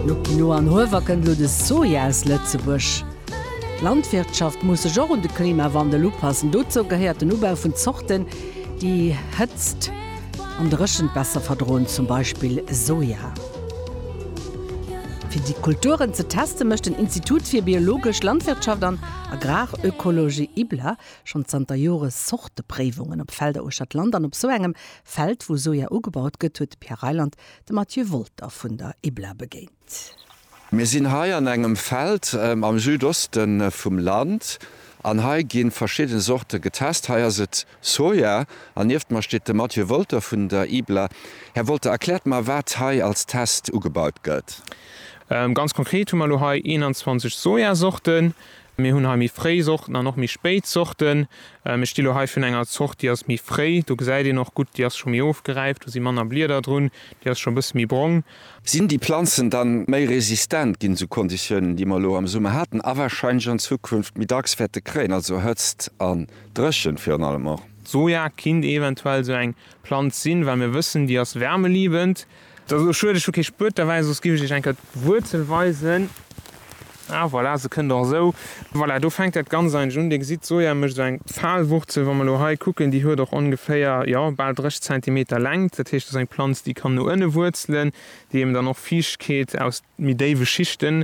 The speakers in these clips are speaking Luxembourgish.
No Quinoa an Huewer kënnt elo de Soja aus Lëtzebuerg. D'Landwirtschaft muss sech och un de Klimawandel upassen. Dozou gehéiert den Ubau vun Zorten, déi Hëtzt an Dréchent besser verdroen, zum Beispill Soja. Fir déi Kulturen ze testen, mécht den Institut fir biologesch Landwirtschaft an Agrarökologie, IBLA, schonn zanter Jore Zortepréiwungen op Felder uechter d'Land. An op esou engem Feld, wou Soja ugebaut gëtt, huet de Pierre Reyland De Mathieu Wolter vun der IBLA begéint. Mir sinn hei an engem Feld am Südoste vum Land an hei gi verschidde Sorte getest. Hei ass et Soja an nieft mer steet de Mathieu Wolter vun der IBLA. Här Wolter, erkläert mer, wat hei als Test ugebaut gëtt. Ganz konkret hu mer elo hei 21 Sojasorten, Mir hunn hei méi fréi Sorten an och méi spéit Sorten. Ech gi lo hei vun enger Zort, déi ass méi fréi. Do gesäit een och gutt, déi ass scho méi ofgeräift, do si manner Blieder drun, déi ass scho e bësse méi brong. Sinn déi Planzen dann méi resistent ginn esou Konditiounen, déi mer elo am Summer haten a warscheinlech an Zukunft méi dacks wäerte kréien, also Hëtzt an Dréchent virun allem och? D'Soja kinnt eventuell esou eng Planz sinn, well mir wëssen, déi ass wärmeliebend. Et ass elo schued, ech hu kee Spuet derbäi, soss giff ech iech enker d'Wuerzel weisen. Ah voilà, se kënnt och esou. Voilà, do fänkt dat Ganzt eigentlech un. Dir gesitt, d'Soja mécht esou eng Pfahlwurzel. Wa mer elo hei kucken, déi huet och ongeféier, jo, bal 30 Zentimeter Längt. Dat heescht, dat ass eng Planz, déi kann no ënne wuerzelen, déi eben dann och Fiichtkeet aus méi déiwe Schichten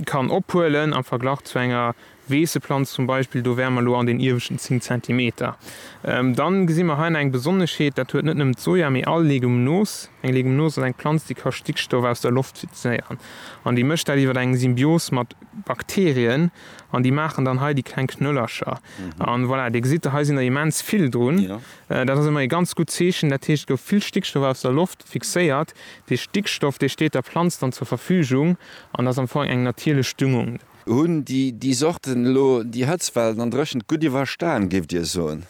kann ophuelen am Verglach zu enger Weesseplanz zum Beispill, do wäre mer elo an den ieweschten 10 Zentimeter. Dann gesi mer hei nach eng Besonneschheet, dat huet net nëmmen d'Soja, mee all Legumnos. Eng Legumnos ass eng Planz, déi ka Stickstoff aus der Loft fixéieren an déi mécht dat iwwer eng Symbios mat Bakterien an déi maachen dann hei déi kleng Knöllercher. An voilà, Dir gesitt, hei sinn der immens vill drun. Dat ass ëmmer ee ganz gutt Zeechen. Dat heescht, et gouf vill Stickstoff aus der Loft fixéiert. Dee Stickstoff, dee steet der Planz dann zur Verfügung an ass am Fong eng natierlech Düngung. Hunn déi Sorten elo déi Hëtztwellen an Dréchent gutt iwwerstan, géift Dir soen?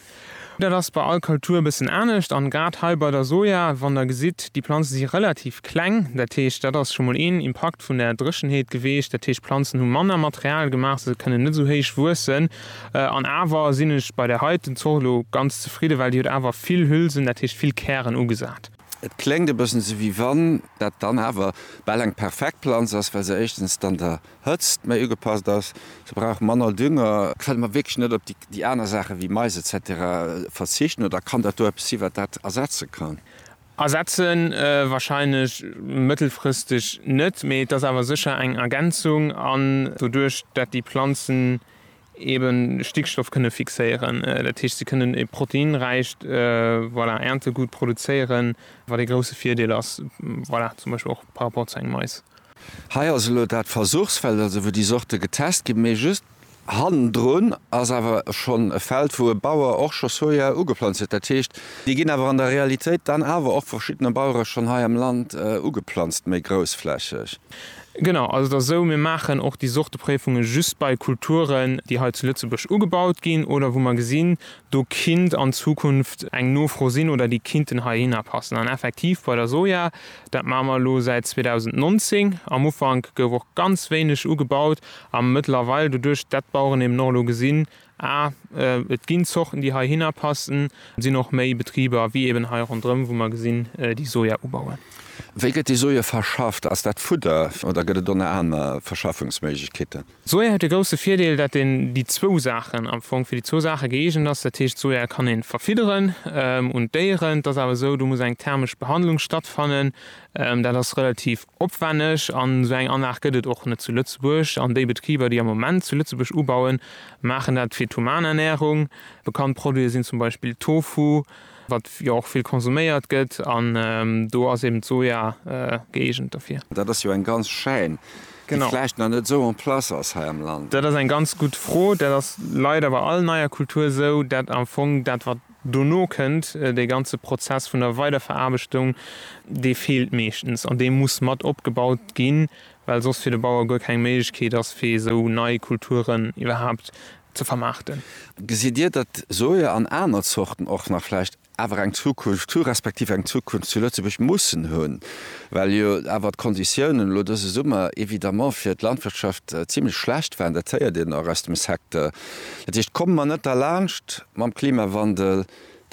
Dat ass bei all Kultur e bëssen anescht. An grad hei bei der Soja, wann Der gesitt, déi Planzen si relativ kleng. Dat heescht, dat ass scho mol een Impakt vun der Dréchenheet geweecht. Dat heescht, d'Planzen hu manner Material gemaach, sou se kënnen net esou héich wuessen. An awer sinn ech bei där heiten Zort elo ganz zefridden, well déi huet awer vill Hülsen, dat heescht vill Kären ugesat. Et kléngt e bëssen esou, wéi wann dat dann awer bal eng perfekt Planz ass, well se éischtens dann der Hëtzt méi ugepasst ass, se brauch manner Dünger. Kënne mer wierklech net op déi aner Saache wéi Mais etc verzichten oder kann dat do eppes sinn, wat dat ersetze kann? Ersetze wahrscheinlech mëttelfristeg net, mee et ass awer sécher eng Ergänzung an doduerch dat déi Planzen, eben Stickstoff kënne fixéieren, dat heescht si kënnen e proteinräicht, voilà, Äertegut produzéieren, wat ee grousse Virdeel ass, voilà, zum Beispill och par rapport zu engem Mais. Hei ass elo dat Versuchsfeld, also wou déi Sorte getest ginn, mee just hannendrun ass awer schonn e Feld, wou e Bauer och scho Soja ugeplanzt huet. Dat heescht, déi ginn awer an der Realitéit dann awer och vu verschiddene Bauere schonn hei am Land ugeplanzt, méi groussflächeg. Genau, also et ass esou, mir maachen och déi Sorte Préifunge just bei Kulturen, déi hei zu Lëtzebuerg ugebaut ginn oder wou mer gesinn, do kinnt an Zukunft eng Nofro sinn oder déi kinnten heihinner passen. An effektiv bei der Soja, dat maache mer elo säit 2019, am Ufank gouf och ganz wéineg ugebaut a mëttlerweil, doduerch dat d'Baueren eben och elo gesinn, A, Et ginn Zorten, déi heihinner passen. Et sinn och méi Betriber, wéi eben hei ronderëm, wou mer gesinn, déi Soja ubauen. Wéi gëtt déi Soja verschafft? Ass dat Fudder oder gëtt et och nach aner Verschaffungsméiglechkeeten? D'Soja huet de grousse Virdeel, datt een déi zwou Saachen, am Fong fir déi zwou Saache gëeegent ass. Dat heescht, d'Soja kann ee verfidderen un d'Déieren. Et ass awer esou, do muss eng thermesch Behandlung stattfannen. Dat ass relativ opwänneg an esou eng Anlag gëtt et och net zu Lëtzebuerg. An déi Betriber, déi am Moment zu Lëtzebuerg ubauen, maachen dat fir d'Humanernährung. Bekannt Produite sinn zum Beispill Tofu, wat jo och vill konsuméiert gëtt, an do ass eben d'Soja gëeegent derfir. Dat ass jo eng ganz Chaîne, déi vläicht nach net esou en place ass hei am Land. Dat ass eng ganz gutt Fro. Dat ass leider bei all neier Kultur esou, dat am Fong dat, wat Dono kënnt dee ganze Prozess vun der Weiderveraarbechtung, dee feelt meeschtens an dee muss mat opgebaut ginn, well soss fir de Bauer guer keng Méiglechkeet ass, fir esou nei Kulturen iwwerhaapt ze vermaarten. Gesitt Dir, datt Soja an aner Zorten och nach vläicht awer eng Zukunft hu respektiv eng Zukunft zu Lëtzebuerg mussen hunn, well jo awer d'Konditiounen elo dëse Summer évidemment fir d'Landwirtschaft zimlech schlecht waren? Dat héiert een och aus dem Secteur. Dat heescht, komme mer net derlaanscht mam Klimawandel,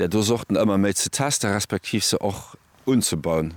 där do Sorten ëmmer méi ze testen, respektiv se och unzebauen.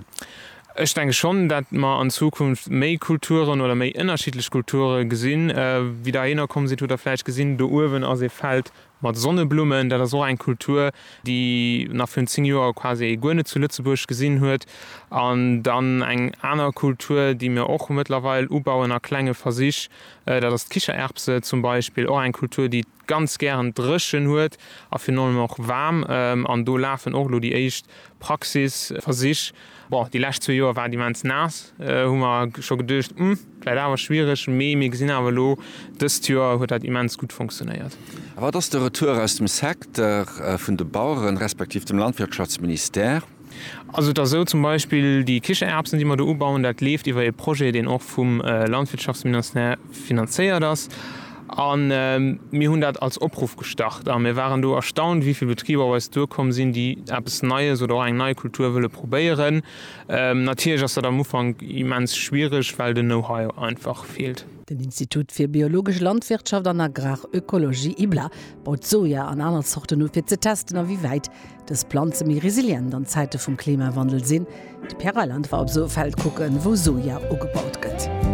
Ech denke schonn, datt mer an Zukunft méi Kulturen oder méi ënnerschiddlech Kulture gesinn. Wéi Der hierno komm sidd, hutt Der vläicht gesinn, do uewen ass ee Feld mat Sonneblummen. Dat ass och eng Kultur, déi nach virun zéng Joer quasi ee guer net zu Lëtzebuerg gesinn huet. An dann eng aner Kultur, déi mir och mëttlerweil ubauen a klenge Versich, Dat ass d'Kichererbse zum Beispill, och eng Kultur, déi et ganz gären dréchen huet a virun allem och waarm. An do lafen och elo déi éischt Praxisversich. Bon, déi lescht zwee Joer war et immens naass, hu mer scho geduecht, Hm, vläit awer schwiereg. Mee mir gesinn awer elo, dëst Joer huet dat immens gutt funktionéiert. A wat ass de Retour aus dem Secteur vun de Baueren, respektiv dem Landwirtschaftsministère? Also et ass esou, zum Beispill déi Kichererbsen, déi mer do ubauen, dat leeft iwwer ee Projet, deen och vum Landwirtschaftsminastère finanzéiert ass. A mir hunn dat als Opruff gestart a mir waren do erstaunt, wéi vill Betriber op eis duerkomm sinn, déi eppes Neies oder och eng nei Kultur wëlle probéieren. Natierlech ass dat am Ufank immens schwiereg, well den Know-how einfach feelt. Den Institut fir biologesch Landwirtschaft an Agrarökologie, IBLA, baut Soja an aner Zorten u fir ze testen, a wéi wäit dës Planze méi resilient an Zäite vum Klimawandel sinn. De Pierre Reyland war op esou e Feld kucken, wou Soja ugebaut gëtt.